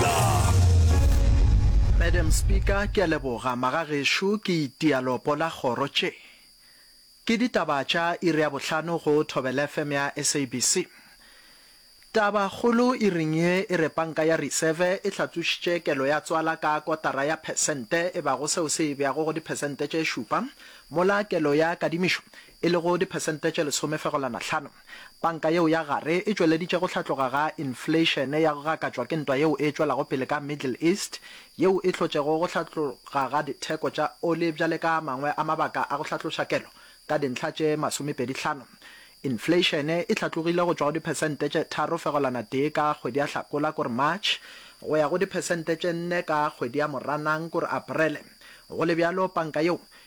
Seeta. Madam Speaker, ke a leboga. Magagešo, ke itia lopo la kgoro tše. Ke ditaba tša iri ya bohlano go Thobelfm ya SABC. Taba kgolo iring ye e re panka ya Reserve e hlatsošitše kelo ya tswala ka kotara ya phesente e bago seo se e beago go diphesente tše šupa, mola kelo ya kadimišo e lego diphesente tše lesomefegolana hlano. Panka yeo ya Gare e tšweleditše go hlatloga ga infleišene ya go gakatšwa ke ntwa yeo e tšwelago pele ka Middle East, yeo e hlotšego go hlatloga ga ditheko tša oli bjale ka a mangwe a mabaka a go hlatloša kelo ka dintlha tše masomepedi hlano. Infleišene e hlatlogile go tšwa go diphesente tše tharo fegelwana tee ka kgwedi ya Hlakola, kore March, go ya go diphesente tše nne ka kgwedi ya Moranang, kore Aparele. Go le bjalo, panka yeo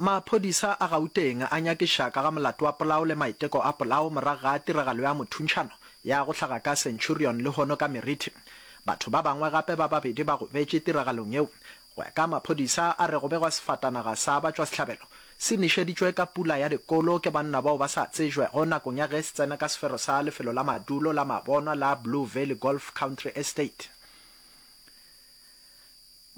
Maphodisa a Gauteng a nyakiša ka ga molato wa polao le maiteko a polao morago ga tiragalo ya mothuntšhano ya go hlaga ka Centurion lehono ka Meriti. Batho ba bangwe gape ba babedi ba gobetše tiragalong yeo. Go ya ka maphodisa a re go begwa sefatanaga sa batšwasehlabelo se nišeditšwe ka pula ya dikolo ke banna bao ba sa tsejwego nakong ya ge se tsena ka sefero sa lefelo la madulo la mabonwa la Blue Valley Golf Country Estate.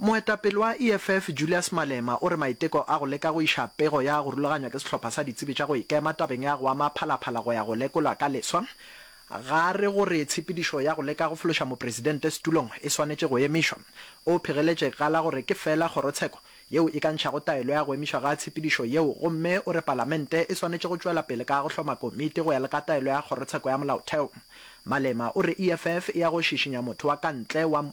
Moetapele wa EFF Julius Malema o re maiteko a go leka go iša pego ya go rulaganywa ke sehlopha sa ditsebi tša go ikema tabeng ya go ama phalaphala go ya go lekolwa ka leswa, ga re gore tshepedišo ya go leka go fološa mopresidente setulong e swanetše go emišwa. O phigeletše ka la gore ke feela kgorotsheko yeo e ka ntšhago taelo ya go emišwa ga tshepedišo yeo gomme o re palamente e swanetše go tšwela pele ka go hloma komiti go ya le ka taelo ya kgorotsheko ya molaotheo. Malema o re EFF e ya go šišinya motho wa ka ntle wa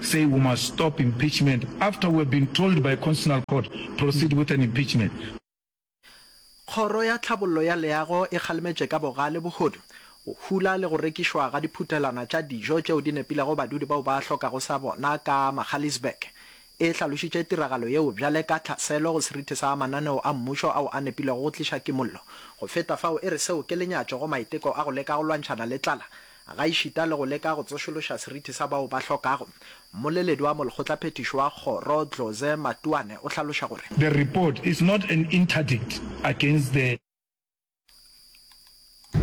say we must stop impeachment after we have been told by Constitutional Court proceed with an impeachment. Kgoro ya Tlhabollo ya Leago e kgalemetše ka bogale bohodu, go hula le go rekišwa ga diphuthelwana tša dijo tšeo di nepilego badudi bao ba hlokago sa bona ka Magaliesburg. E hlalošitše tiragalo yeo bjale ka tlhaselo go serithi sa mananeo a mmušo ao a nepilego go tliša kimollo. Go feta fao, e re seo ke lenyatšo go maiteko a go leka go lwantšhana le tlala Gaešita le go leka go tsošološa seriti sa bao ba hlokago, mmoleledi wa molekgotlaphethiši wa kgoro Dloze Matuane o hlaloša gore. The report is not an interdict against the.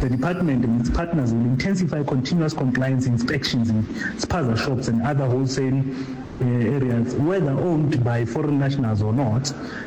The department and its partners will intensify continuous compliance inspections in spaza shops and other wholesale areas, whether owned by foreign nationals or not.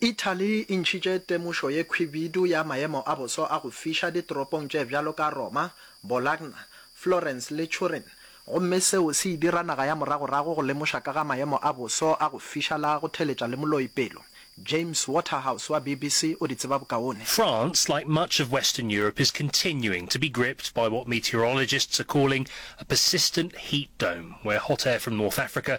Italy e ntšhitše temošo ye khwibidu ya maemo a boso a go fiša ditoropong tše bjalo ka Roma, Bologna, Florence le Turin, gomme seo se e dira naga ya moragorago go lemoša ka ga maemo a boso a go fiša la go theletša le moloi pelo. James Waterhouse wa BBC o di tseba bokaone. France, like much of Western Europe, is continuing to be gripped by what meteorologists are calling a persistent heat dome, where hot air from North Africa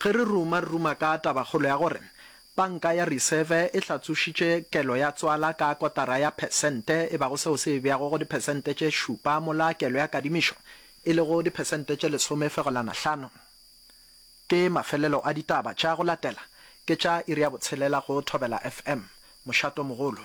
Ge re ruma, re ruma ka tabakgolo ya gore Panka ya Reserve e hlatsošitše kelo ya tswala ka kotara ya phesente, e bago seo se e beago go diphesente tše šupa mola kelo ya kadimišo e lego diphesente tše lesome fegelwana hlano. Ke mafelelo a ditaba tša go latela, ke tša iri ya botshelela go Thobela FM. Mošato mogolo.